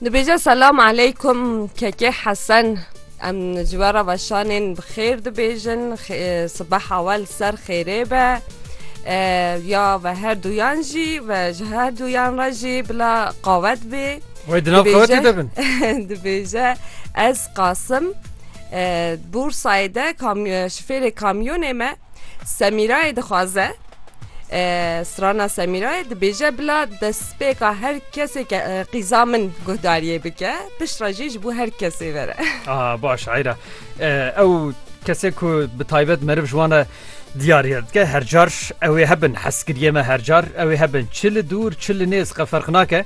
Dibêje selam aleykum kekê hesen em ji we re veşanên bi xêr dibêjin sibeha we li ser xêrê be ya ve her duyan jî ve ji her duyan re jî bila qawet bê Wê di nav qawetê de bin dibêje ez qasim Bursayê de şifêrê kamyonê me semîrayê dixwaze Strana Semîrayê dibêje bila destpêka her kesê ke qîza min guhdariyê bike piştre jî ji bo her kesê vere. Aha baş eyra ew kesê ku bi taybet meriv ji wan re diyariye dike hercar ew ê hebin heskiriyê me hercar ew ê hebin çi li dûr çi li nêz qe ferq nake.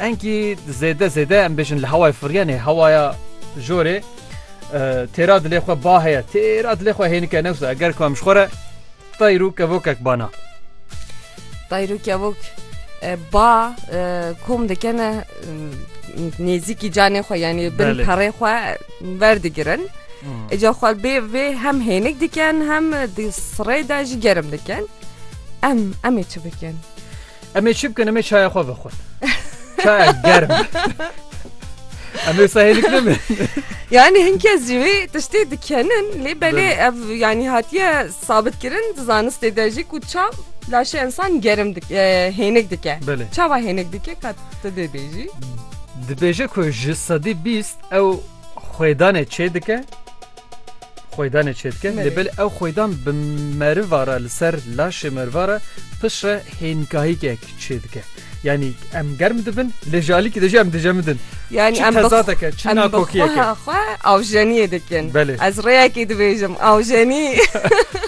Enkî zêde zêde em bêjin li hewayê firyanê hewaya jorê têra dilê xwe ba heye têra dilê xwe hênike newsa eger ku em ji xwe re tayr û kevokek bana. Tayr û kevok ba kom dikene nêzîkî canê xwe yanî bin perê xwe verdigirin. Eca xwe bê vê hem hênik dikin hem di sirê de jî gerim dikin. Em em ê çi bikin? Em ê çi bikin em ê çaya xwe vexwin. Çaya germ. Em ê sahêlik nemin. Yani hin kes jî wê tiştê dikenin lê belê ev yanî hatiye sabitkirin di zanistê de jî ku çav laşê insan gerim hênik dike. Belê. Çava hênik dike ka tu dê bêjî. Dibêje ku ji sedî bîst ew xwêdanê çê dike Xwêdanê çêdike lê belê ew xwêdan bi meriva re li ser laşê meriva re pişt re hênkahîkek çêdike. Yanî em germ dibin lê ji alîkî de jî em dicemidin. Yanî Çi em bi tezateke, çi em bi nakokiyeke. xweha xwe awjeniyê dikin. Belê. Ez rêyekê dibêjim awjenî.